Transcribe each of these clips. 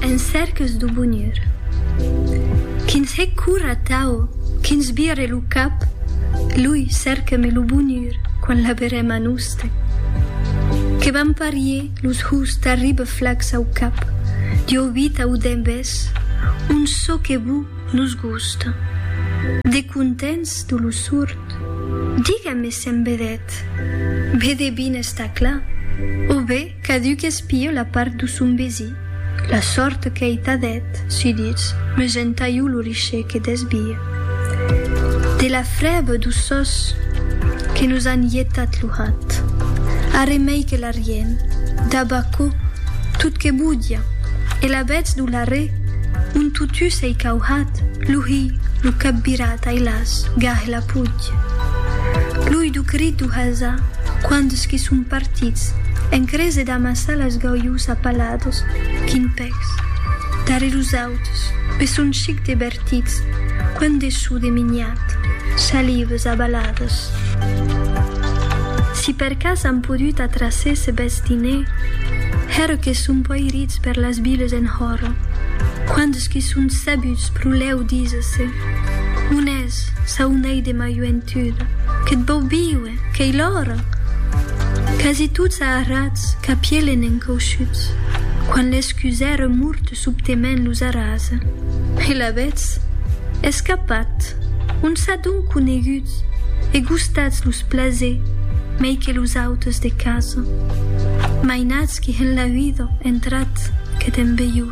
En cèrques do bonur. Quins hè cor atau quins vire lo cap, lui cèrqueme lo bonur quan l'aberem a noste. Que vam parier los hous tarribe flacs au cap, dieu vita o dembés, un çò que bu nos gusta. De contents do lo surt. Diga-me s'en vedèt. Be de bines tà cla, o be. Caduc espio la part do son besi. La sòrt qu'ei ta dèt, sudits, me gentalho lo riche que desbie. De la frèba do sòs que nos an ietat lo hat. Arre mei que la riem, dab aquò, tot que bodia, e la vètz do l'arre, on totús ei cauhat, lo hi, lo cap virat, ai las, gah e la. Puig. Plui du crit du hasa, quands qui son partits, en crese d'amassar las gaujus a palados, quin pècs. Darrèr us auts, pe son chic de bertits, quant de sou de miniat, chalives a balades. Si per cas an podut atraser ce bèth diner, hèr que son poirits per las viles en hòro, quands qui son sabuts pro lèu díser-se, on es? Eus, saunei de ma joentut, que't vau viuer, qu'ei l'ora! Quasi tots aharrats, qu'a pielen encauchuts, quan l'escusère murt subtement los arrasa. E l'avètz escapat! On s'a donc coneguts e gustats los plasers mei que los autes de casa, mainatz qu'i en la vida entrat que t'en veiu.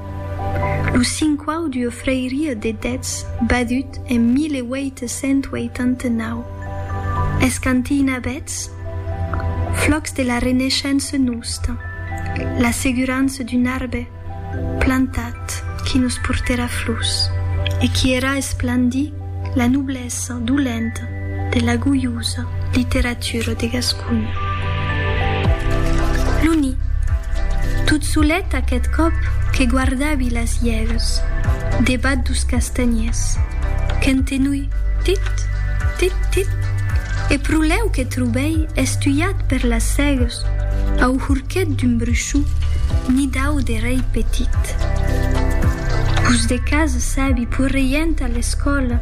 Lo cinquau duo Freiria de Dètz, badut en 1889. Es cantina bètz flòcs de la Reneishença nosta, l'assegurança d'un arbe plantat qui nos portèra flors e qui èra esplandit, La noblesa dolenta de la goiosa literatura de Gasconha. L'Uni, tot solet aqueth còp que guardavi las iègas debat dos castanhiers, qu'entenui tit, tit, tit, e pro lèu que trobèi estuiat per las cègas, Au hurquet d'un bruchon nidau de rei petit. Pus de cas sabi pus reient a l'escòla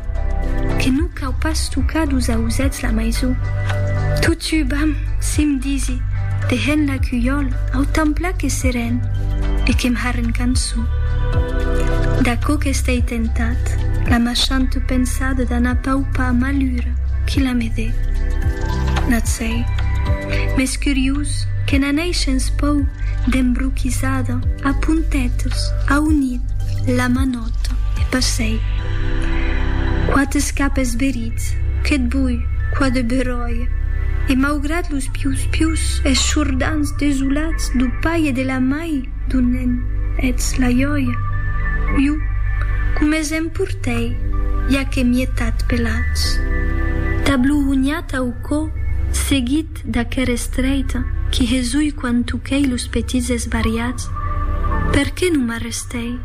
que non cau pas tocar dus ausets la maison. Totu vam, sim disi, dehent la cuiòla au templà que seren e que'm harren cançon. D'aquò qu'estei tentat, la machante pensada d'anar paupar malura qui la me dé. Natz. Ei mès curiós que n'aneishen's pòu d'embroquisada a puntetes a unir la manòta e passei qua t'es cap esberits que't boi qua de beròia e maugrat los pius pius es chordants desolats dau pair e de la mai d'on ne'n ets la jòia iu com es emportei ja que m'ie tat pelats ta bluhonhat au Quò seguit d'aquer estreit qui hesui quan tuquei los petits esbariats, per qué non m'arrestei?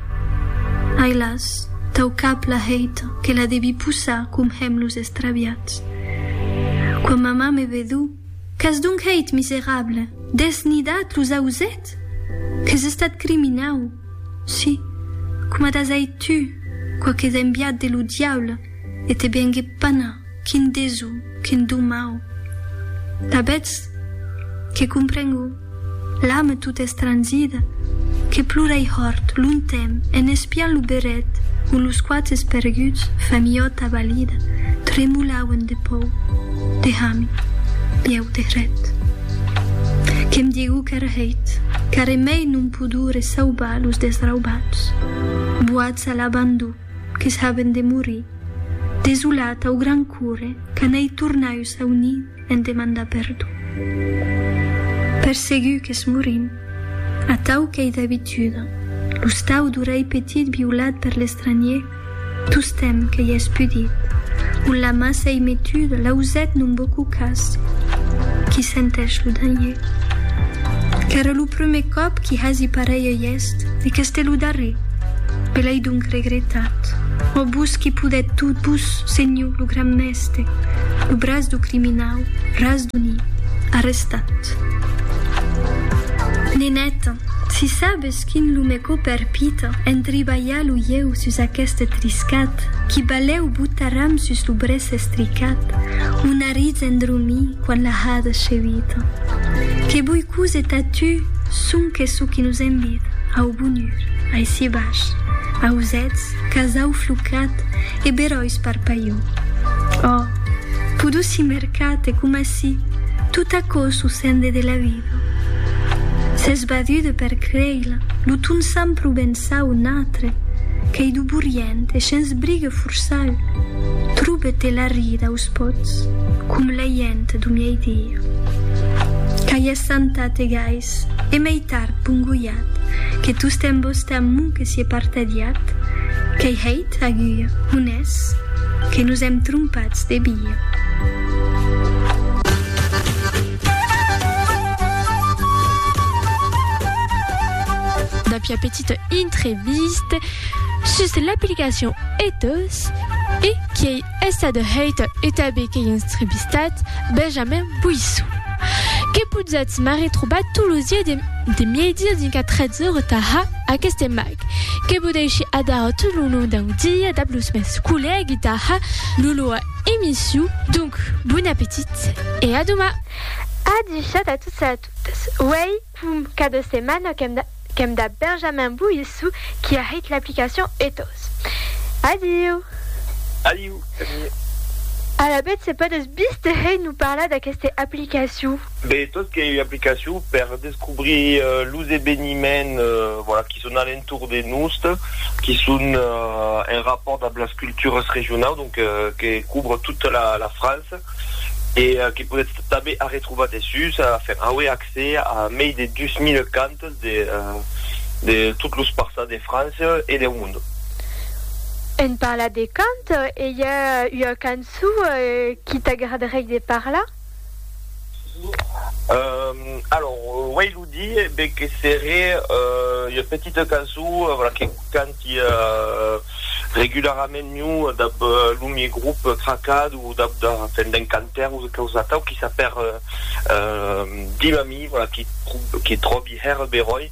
Ai las, tau cap la hèit que la devi possar com hèm los estraviats. Quan mamà me vedú, qu'as donc hèit, miserable? Desnidat los auset? Qu'es estat criminau? Si, coma t'as hèit tu, quoque dembiat de lo diable, e te vengue pana. Quin desu, quin don mau! Tabetz que comprengo, l'ame tota estrangida, que plora ei hòrt, lontemp, en espiant lo beret ont los quates perguts, familhòt abalida, tremolauen de pòu, de hami, bieu de hret. Que'm digou qu'ère hèit, caremei non podure saubar los desraubats, boats a l'abandon, que saben de morir, desolat au gran cure que n'ei tornau sau nid en demandar perdon. Per segur qu'es morint, atau qu'ei d'abituda, lo stau d'orelh petit violat per l'estranhier tostemp que i es pudit, ont la ma s'ei metuda l'auzet non beaucoup cas qui senteish lo danhier. Qu'ère lo prumèr còp qui hasi pareilh eust e qu'este lo darrer. E l'ai donc regretat. Ò vos qui podèt tot, vos, senhor lo gran mèste, lo braç do criminau, ras do nit, arrestat. Neneta, si sabes quin lo me cò perpita en tribalhar lo ieu sus aqueste triscat, qui balèu botaram sus lo brèç estricat, o n'arritz en dromir quan la hada chevita. Que boi cose ta tu, sonque çò qui nos envita au bonur. Aicí baish, ausèths, casau flocat e beròis par paio. Ò! Podossi mercat e coma si tot aquò s'o sende de la vida. S'ès badude per creila, lo ton sant provençau natre, qu'ei do borient e shens brigue forçau, trobe te la rida aus pots, com la hient do miei dia. Qu'ai essantat e gais. E mei tard pongolhat, que tostemp vos tà m'o que sié partadiat, qu'ei hèit agulla, on es, que nos èm trompats de via. Dapia petita intreviste sus l'aplicacion Ethos e quiei Es adhereit e tabé qu'ei instribistat Benjamin Boissou. Que potzatz m'arretrobar tot lo zier de mièdir dinc a 13 ora tara aqueste mag, que vo dèishi adara tot lo long dau dia dab los mèns collègui tara lo loa emissiu. Donc, bon apetit e a doma! A dichat a tots e a totas. Uèi Pum, qu'a de setmana qu'èm dab Benjamin Boissou qui a hèit l'aplicacion Ethos. Adiu! Adiu, Camille. Alavetz se pòdes bis te hèit nous parlar d'aqueste aplicacion? Be, Ethos qu'ei ua aplicacion per descobrir los eveniments voilà qui son a l'entorn de nost, qui son en rapport dab las cultures regionaus, donc que couvre tota la France e que podetz tanben arretrobar dessús a Ferraue, a accès a mei de 2000 cantes de de tot los parças de França e deu mond. En parlar de cant, i a ua canço qui t'agradarie de parlar? Alòrs, uèi lo dire, be que seré ua petita canço, voilà, que canta. Tia regularament miu dab lo mie grup Cracad o dab da fènt d'un cantaire o quausa atau qui sap hèr dim a mi, voilà, qui qui tròbi hèr beròi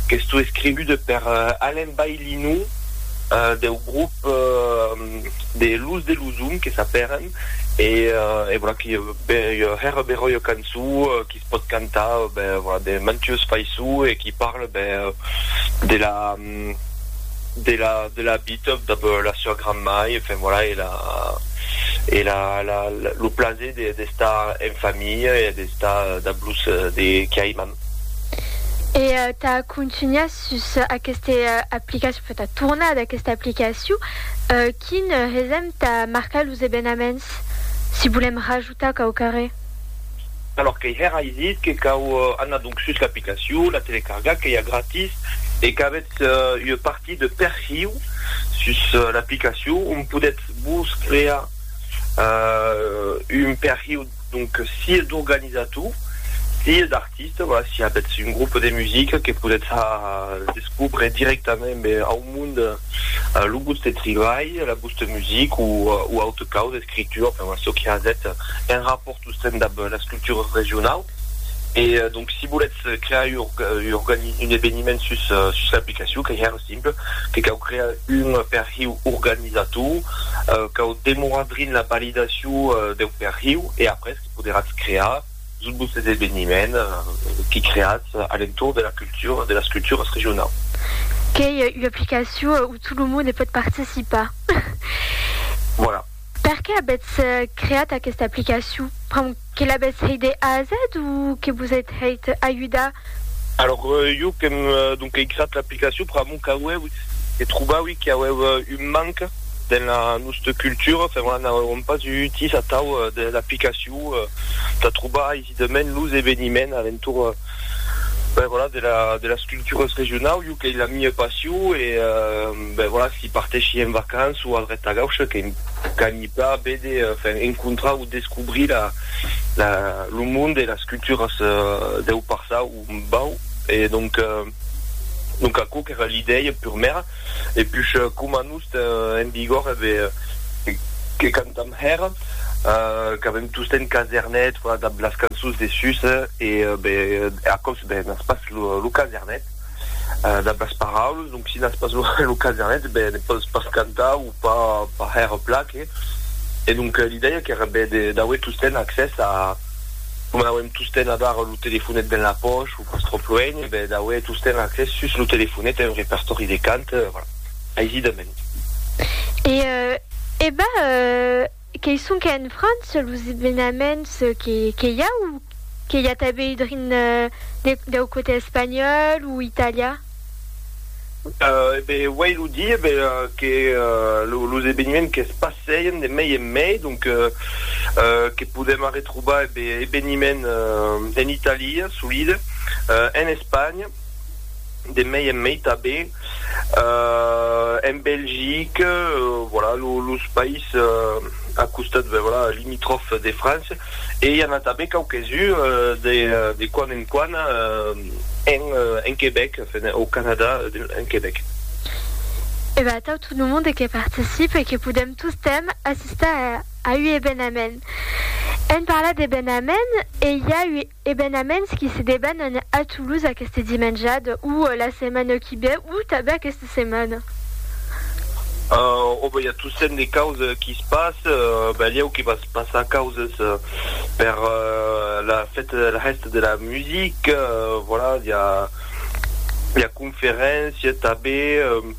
qu'estó escrivut per Alain Baillinou deu grup de Luz de Luzum que sap hèren e e voilà qui hèr beròi cançó qui se pòt cantar ben voilà de mantuós faissó e qui parle ben de la de la de la bitob dab la sua granmai e enfin voilà e la e la la lo plaser de d'estar en familha e d'estar dab los de qui aiman. E tà contunhar sus aqueste aplicacion, enfin tà tornar d'aquesta aplicacion, quin hesèm tà marcar los evenaments si volèm rajustar? Tà cau carrer. Alòr qu'ei hèr ai dit que cau anar donc sus l'aplicacion, la telecargar qu'ei a gratis e qu'avètz ua partit de perhiu sus l'aplicacion ont podètz vos crear un perhiu donc sia d'organizator sia d'artista. Artiste, voilà, s'i a betz un groupe de musica que podetz descobre directament ben au mond lo voste tribalh, la voste music o o aute caus, escritura, enfin voilà, çò que hazètz en rapòrt sosten dab las cultures regionaus. E donc si voletz crear ua organi un eveniment sus sus l'aplicacion qu'ei hèr simple, que cau crear un perhiu organizator, cau demorar drin la validacion deu perhiu e après que poderatz crear, Sus vos eseveniments que creatz a l'entorn de la cultura, de las culturas regionaus. Qu'ei ua aplicacion où tot lo monde pòt participar. Voilà. Per qué avètz creat aquesta aplicacion? Pr'amor que l'avètz hèit de A a Z o que vos ètz hèit ajudar? Alors, jo qu'èm, donc ei creat l'aplicacion pr'amor qu'auèu, que trobaui qu'auèu un manque dens la nosta cultura, enfin voilà, n'auèuam pas eu utís atau de l'aplicacion. Pou t'atrobar aisidament los eveniments alentor ben voilà de la de las cultures regionau jo qu'ei la mia passion e ben voilà si parteshi en vacances o al ret tagau ce que qu'anhi pla vede enfin encontrar o descobrir la la lo monde e las cultures deu parçau bau e donc donc aquò qu'era l'idèia purmèra. e pus coma nos ten en vigor e be que cantam hèr qu'avem tostemp casernet fora dab las cançons de sus e be aquò's be n'as pas lo casernet dab las paraules donc si n'as pas lo casernet be ne pòs pas cantar o pas hèr pla que e donc l'idèia qu'èra be d'auer tostemp accès a coma auem tostemp avar lo telefonet dens la pòch Astropluent, e ben d'aué tostemp accès sus lo telefonet a un repertòri de cant, voilà, aisidament. E e ben qu'ei sonque en França los evenaments que i a, o que i a tanben drin deu cotè espanhòl o italian? E ben, uèi lo di, e ben, que los eveniments que's passèien de mei en mei, donc, que podèm arretrobar, e ben, eveniments en Italia, solide, en Espanha, de mei en mei tanben, en Belgique, voilà, los païses a costat, ben, voilà, limitròfs de França. e i a n'a tanben quauques uns de de quan en quan en en Quebec, enfin au Canada en Quebec. E ben atau tot lo monde que participe e que podem tostemp assistar a ua evenament. Èm parlat d'evenament e i a ua Ebenaments qui se debanan a Toulouse aqueste dimenjad o la setmana qui ve o tanben aqueste setmana. O ben i a tossent de causes qui se passe, balhèu que va se passar causes per la fête de la hèsta de la musique, voilà, i a conferéncia tanben.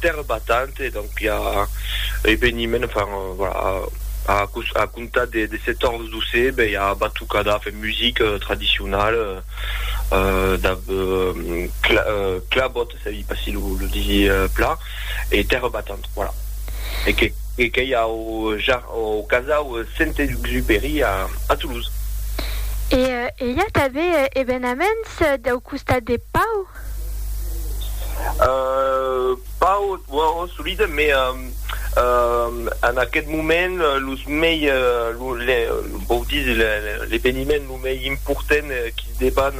Terre battante, donc i a eveniment, enfin voilà, a comptar de 14 d'océ ben i a batucada, enfin musique tradicionale, clabot, ça i pas si lo disi plan, e terre battante, voilà. E que e que i a au casau Saint-Exupéry a Toulouse. E i a tanben evenaments dau costat de Pau? Pas au solide, mais en aquest moment los mei vau dire l'eveniment lo mei important qui deban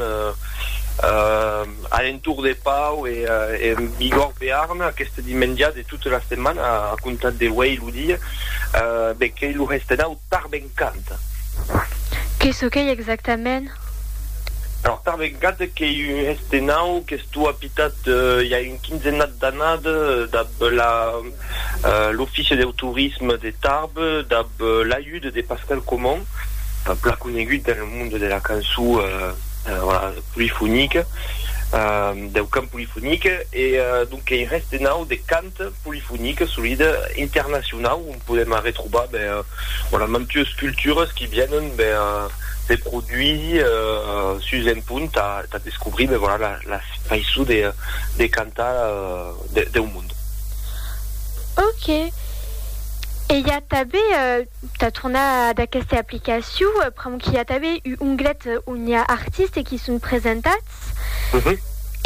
alentour de Pau e en Bigorre Bearn aquest dimenja de tota la setmana a comptar de uèi lo dia be qu'ei lo Restenau Tarbencant. Que çò qu'ei exactament? Alors tà vegada qu'ei un hèste nau qu'estó apitat i a un quinzenat d'anada dab la l'Offici deu Torisme de Tarbes dab l'ajuda de Pascal Comon, plan conegut dens lo monde de la cançó polifonica, deu cant polifonic, e donc qu'ei un hèste nau de cant polifonic, solida, internacionau. podèm arretrobar ben, voilà, mantues cultures qui vienen ben, de produits sus un punt tà tà descobrir ben, voilà, la faiçon de de cantar de deu mond. Ok. E i a tanben, tà tornar ad aquesta aplicacion, pr'amor qu'i a tanben u onglet on i a artistes qui son presentats.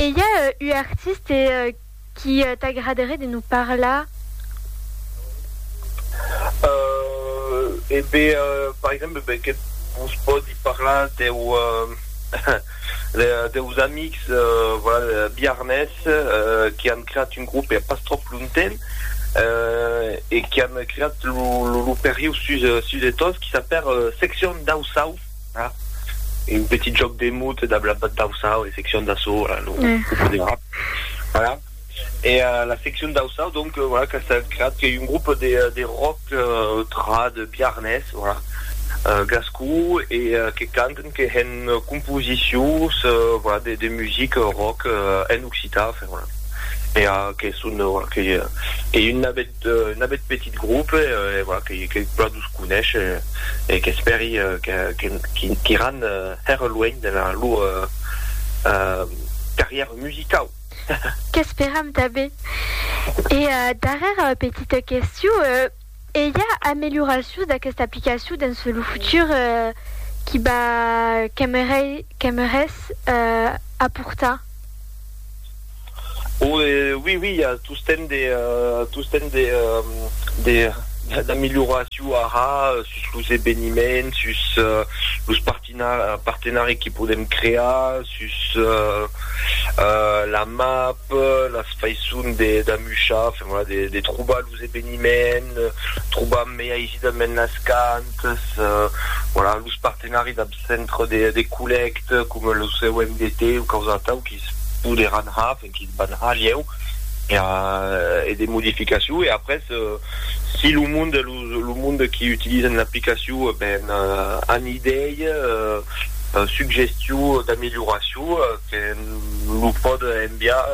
E i a u artiste Qu'i t'agraderie de nous parlar? Euh, e be, par exemple, be que vos pòdi parlar deu, deus amics, voilà, biarnés, qu'i an creat un grop pas tròp lonten, e qu'i an creat lo, lo, lo perriu sus, sus de Tos, qu'i s'apèr Seccion dau Saut. Ah, e un petit jòc de mot dab la dausau, e seccion d'assaut, voilà, lo grup de rap, voilà. E la seccion dausau, donc, voilà, qu'a estat creat, qu'ei un grup de de rock trad biarnés, voilà, gascon, e que canten, que hèn composicions, voilà, de de music rock en occitan, enfin, voilà. E que son, voilà, qu'ei un nabet Un abet petit grope, e voilà, que pladus conesh, e qu'espèri qu'iràn hèr luènh de la lor carrièra musicau. Qu'esperam tanben. E darrèra petita questiu, e i a amelioracions d'aquesta aplicacion dens lo futur qui va qu'aimerètz aportar? O e oui oui i a tostemp de tostemp de de d'amilhoraciu ara sus los eveniments sus los partina partenari que podem crear sus la map las faisson de d'amuchar enfin voilà de de trobar los eveniments trobar mai aisidament las cantas voilà los partenari dab centre de de collècte coma lo COMDT o quausa atau quis poderàn har e quis van har ieu era e de modificacion e après si lo monde los lo monde qui utilisen l'aplicacion ben an idei suggestion d'amélioracion que lo pòd enviar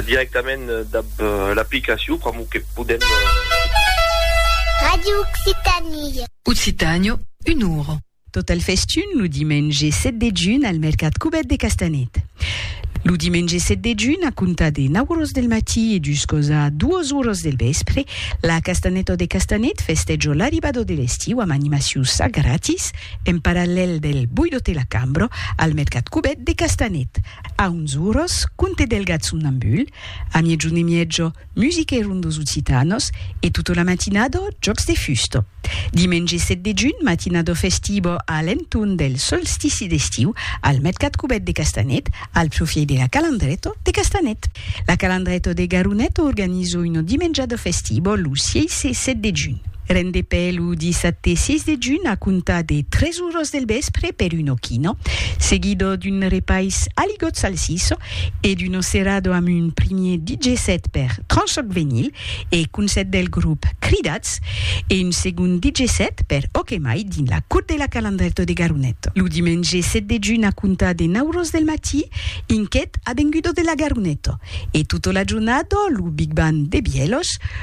directament dab l'aplicacion pr'amor que podem. Radio Occitanie. Occitànio, un oro. Tot al festun lo dimenge 7 de junh al mercat Cubèt de Castanet. Lo dimenge 7 de junh, a comptar de 9 oras del matí e juscòs a 2 oras del vèspre, la Castanèta de Castanet festèja l'arribada de l'estiu amb animaciu ça gratis en parallèl del Boidote la Cambra al mercat Cubèt de Castanet. A 11 oras, Conte Delgat son ambul, a miègjun e mièja, Musica e rondos occitanos e tota la matinada jòcs de fusta. Dimenge 7 de junh, matinada festiva a l'entorn del solstici d'estiu al mercat cubèt de Castanet, al profièit de la Calandreta de Castanet. La Calandreta de Garonet organiza una dimenjada festiva lo 6 e 7 de junh. Rendepè lo dissabte 6 de junh a comptar de 3 oras del vèspre per una quina, seguida d'un repais a ligotz salsissa, e d'Uno Cerrado amb un primier DJ set per Tranchoc Venyl e Concèrt del grop Cridats e un segond DJ set per Ok Mai dins la Cour de la Calandrèto de Garonet lo dimenge 7 de junh a comptar de 9 ros del matí inquet Avengudo de la Garoneto e tota la jornada lo Big Band de Bièlhos